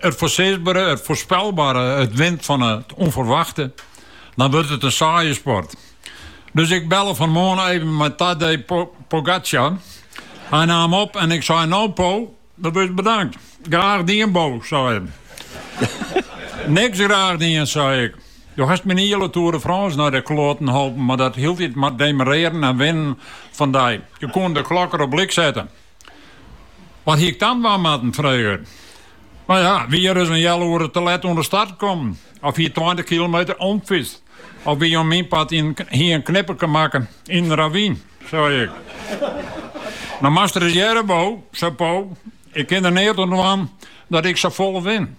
It foarsisbere, it foarspelbare, it wint fan it ûnferwachte, dan wurdt it in saaie sport. Dus ik belle fanmoarn even mei Tadej Pogacar. Hy naam op en ik sei, no Po, do wurdst bedankt. Graach dien Bo, sei er. Niks graach dien, sei ik. Do hast myn hiele Tour de France nei de kloaten holpen mei dat hieltyd mar demarrearen en winnen fan dy. Je koene de klok der op lyk sette. Wat hie ik dan dwaan moatten? frege er. No ja, wie ris in heal oere te let oan de start kommen, of hie tweintich kilometer omfytst, of wie, om myn part hie in knipperke makke yn in ravyn, sei ik. No moatst ris hearre, Bo, sei Po, ik kin der neat oan dwaan dat ik sa folle win.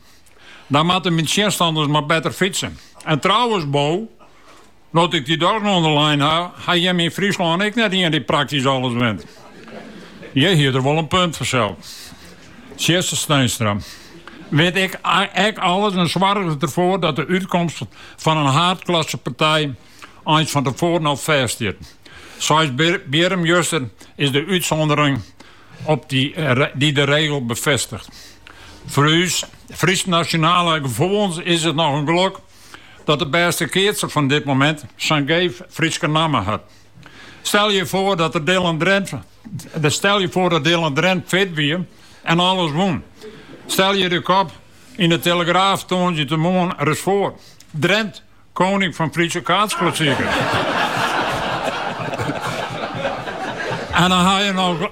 Dan moatte myn tsjinstanners mar better fytse. En trouwens, Bo, No't ik dy dochs oan de lijn ha, ha jimme yn Fryslân ek net ien dy't praktysk alles wint. Hjir hie er wol in punt fansels. Tjisse Steenstra wint ek alles en soarget derfoar dat de útkomst fan in haadklassepartij eins fan tefoaren al fêst stiet. Seisbierrum juster is de útsûndering op dy't de regel befêstigt. Foar ús Frysk-nasjonale gefoelens is it noch in gelok dat de bêste keatser fan dit moment sa'n geef Fryske namme hat. Stel je foar dat de, stel je foar dat Dylan Drent fit wie en alles wûn. Stel je de kop yn de Telegraaf tongersdeitemoarn ris foar. Drent, koning van Friese kaatsklassieker. En dan ha je noch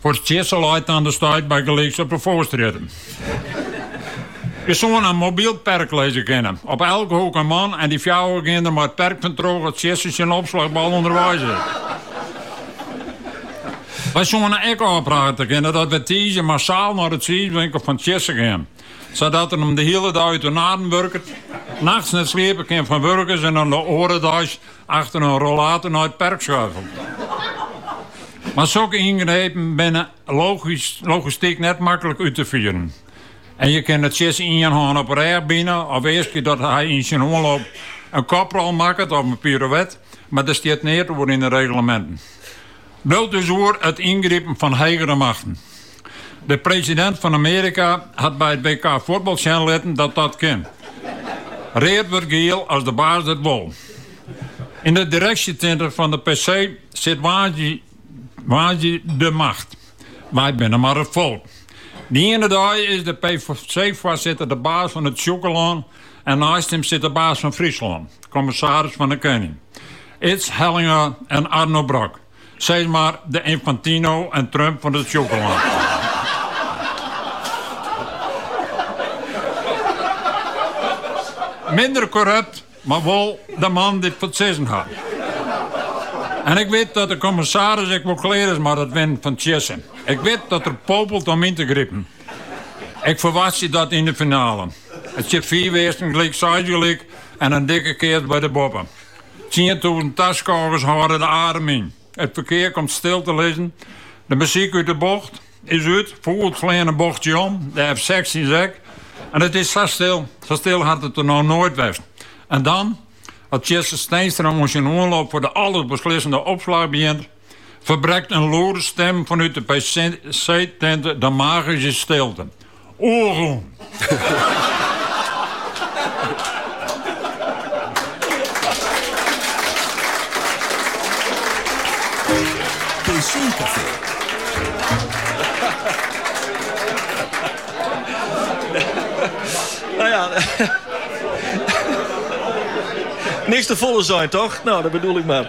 Foar Tjisse leit dan de stuit bygelyks op de Foarstrjitte. Je soene in mobyl perk lizze kinne. Op elke hoek in man en dy fjouwer gean der mei it perk fantroch as Tjisse syn opslachbal ûnderweis is. Wy soene ek ôfprate kinne dat wy tiisdei massaal nei de tsiiswinkel fan Tjisse gean. Sadat er him de hiele dei út de naden wurket, nachts net sliepe kin fan wurgens en dan de oare deis Achter in rollator nei it perk skuifelt. Mar sokke yngrepen binne logistyk net maklik út te fieren. En je kinne Tjisse ien hân op 'e rêch bine of easkje dat hy yn syn oanloop in koprol makket of in pirouet, mar der stiet neat oer yn de regleminten. Bliuwt dus oer: it yngripen fan hegere machten. De presidint fan Amearika hat by it WK fuotbal sjen litten dat dat kin. Read wurdt giel as de baas dat wol. Yn de direksjetinte fan de PC sit woansdei de macht. Wy binne mar it folk. Dy iene dei is de PC-foarsitter de baas fan it Sjûkelân en neist him sit de baas fan Fryslân, kommissaris fan de kening. Ids Hellinga en Arno Brok. Sis mar de Infantino en Trump fan it Sjûkelân. Minder korrupt, mar wol de man dy't it foar it sizzen hat. En ik wit dat de kommissaris ek wol klear is mei dat winnen fan Tjisse. Ik wit dat er popelt om yn te gripen. Ik ferwachtsje dat yn de finale. It stiet fiif earsten gelyk, seis gelyk en in dikke keats by de boppe. Tsientûzen taskôgers hâlde de adem yn. It ferkear komt stil te lizzen. De muzyk út de Bogt is út. Fûgels fleane in bochje om, de F-sechstjins ek. En it is sa stil. Sa stil hat it der noch noait west. En dan, as Tjisse Steenstra oan syn oanloop foar de alles beslissende opslach begjint. Ferbrekt in lûde stim fanút de PC-tinte de magyske stilte. Oergûn! PC-kafee. No ja. Niks te folle sein, toch? No, dat bedoel ik mar.